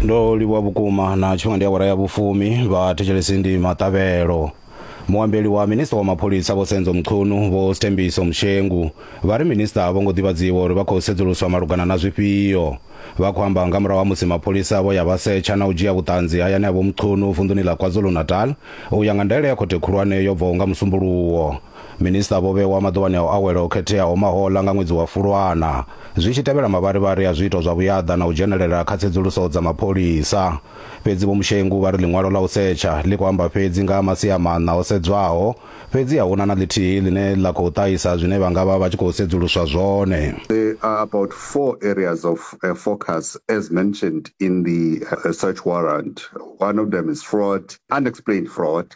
ndo livhuwa vhukuma na tshifhinga ndi awara ya vhufumi vhathetshelesi ndi maṱavhelo muambeli wa minista wa mapholisa vho senzo mchunu vho stembiso mshengu vha ri minista a vho ngo ḓivhadziwa uri vha khou sedzuluswa malugana na zwifhio vha khou amba nga murahu ha musi mapholisa vho ya vha setsha na u dzhia vhuṱanzi hayani ha vho mchunu vunḓuni ḽa kwazulu-natal u ya nga ndaela ya khothe khulwane yo bvaho nga musumbuluwo Minista vho vhewa maḓuvhani a u awela o khetheaho mahoḽa nga ṅwedzi wa Fulwana, zwi tshi tevhela mavharivhari a zwiito zwa vhuyaḓa na u dzhenelela kha tsedzuluso dza mapholisa. Fhedzi Vho Mushengu vha ri ḽiṅwalo ḽa u setsha ḽi khou amba fhedzi nga ha masia maṋa o sedzwaho, fhedzi a hu na na ḽithihi ḽine ḽa khou ṱahisa zwine vha nga vha vha tshi khou sedzuluswa zwone. There are about four areas of focus as mentioned in the search warrant. One of them is fraud, unexplained fraud.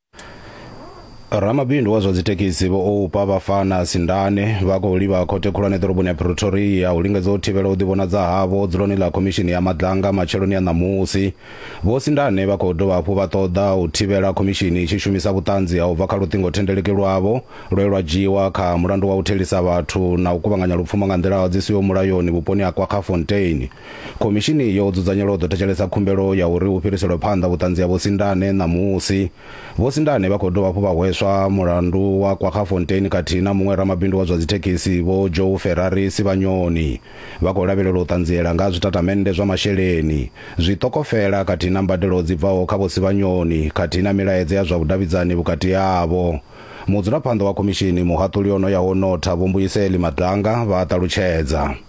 ramabindu wa zwa dzithekhisi vho oupa vhafana sindane vha khou livha khothe khulwane ḓoroboni ya pretoria u lingedza u thivhela u ḓivhonadza havho dzuloni ḽa khomishini ya madlanga matsheloni a ṋamusi vho sindane vha khou dovha hafhu vha ṱoḓa u thivhela khomishini i tshi shumisa vhuṱanzi ha u bva kha luṱingothendeleki lwavho lwe lwa dzhiiwa kha mulandu wa u thelisa vhathu na u kuvhanganya lupfumo nga nḓila dzi siho mulayoni vhuponi ha kwakhafonteini Khomishini yo dzudzanyelwa u ḓo thetshelesa khumbelo ya uri hu fhiriselwe phanḓa vhuṱanzi ha Vho Sindane ṋamusi. Vho Sindane vha khou dovha hafhu vha hweswa mulandu wa Kwaggafontein khathihi na muṅwe ramabindu wa zwa dzithekhisi Vho Joe Ferrari Sivhanyoni. Vha khou lavhelelwa u ṱanziela nga ha zwitatamennde zwa masheleni, zwiṱokofela khathihi na mbadelo dzi bvaho kha Vho Sivhanyoni khathihi na milaedza ya zwa vhudavhidzani vhukati havho. Mudzulaphanḓa wa khomishini, muhaṱuli o no yaho u notha Vho Mbuyiseli Madanga vha a ṱalutshedza.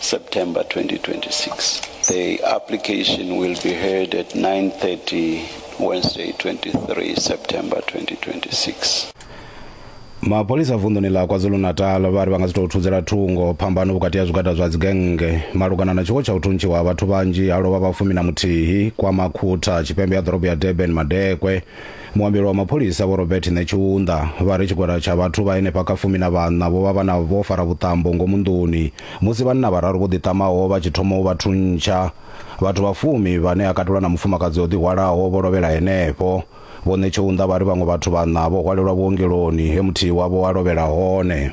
September 2026. The application will be heard at 9:30 Wednesday 23 September 2026. mapholisa vunḓuni ḽa kwazulu-natal vha ri vha nga si tou thudzela thungo phambano vhukati ha zwigwada zwa dzigennge malugana na tshiwo tsha u thuntshiwa ha vhathu vhanzhi ha lovha vhafumi na muthihi kwa makhutha tshipembe ha ḓorobo ya durban madekwe Muambeli wa mapholisa Vho Robert Netshiunda vha ri tshigwada tsha vhathu vha henefha kha fumi na vhaṋa vho vha vha na vho fara vhuṱambo ngomu nḓuni musi vhanna vhararu vho ḓiṱamaho vha tshi thoma u vha thuntsha. Vhathu vha fumi vhane ha katelwa na mufumakadzi o ḓihwalaho vho lovhela henefho. Vho Netshiunda vha ri vhaṅwe vhathu vhaṋa vho hwalelwa vhuongeloni he muthihi wavho a lovhela hone.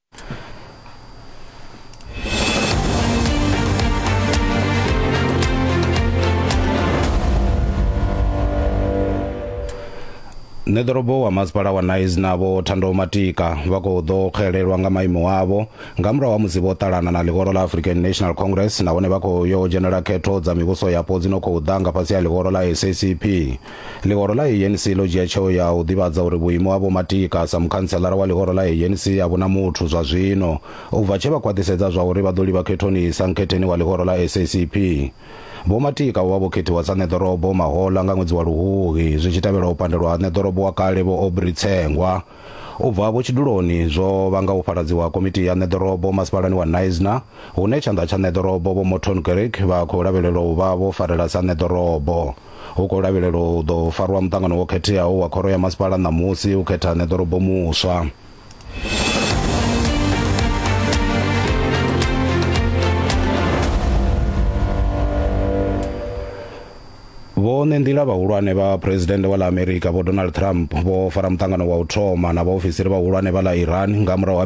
nṋe ḓorobo wa masipala wa nais navho thando matika vha khou ḓo xelelwa nga maimo avho nga murahu ha musi vho ṱalana na ḽihoro ḽa african national congress nahone vha khou yo dzhenela khetho dza mivhuso yapo dzi no khou ḓa nga fhasi ha ḽihoro ḽa sacp Ḽihoro ḽa ANC ḽo dzhia tsheo ya u ḓivhadza uri vhuimo ha Vho Matika sa mukhantselara wa ḽihoro ḽa ANC a vhu na muthu zwa zwino, u bva tshe vha khwaṱhisedza zwa uri vha ḓo livha khethoni sa nkhetheni wa ḽihoro ḽa SACP. Vho Matika vho vha vho khethiwa sa ṋeḓorobo mahoḽa nga ṅwedzi wa Luhuhi zwi tshi tevhela u pandelwa ha ṋeḓorobo wa kale Vho Aubrey Tsengwa u bva vhutshiduloni zwo vhanga u fhaladziwa ha komiti ya ṋeḓorobo masipalani wa Knysna hune tshanḓa tsha ṋeḓorobo Vho Morton Grech vha khou lavhelelwa u vha vho farela sa ṋeḓorobo. hu khou lavhelelwa u ḓo farwa muṱangano wo khetheaho wa khoro ya masipala ṋamusi u khetha ṋeḓorobo muswa vhone nḓila vhahulwane vha phuresidennde wa ḽa amerika vho donald trump vho fara muṱangano wa u thoma na vhaofisiri vhahulwane vha ḽa iran nga murahu ha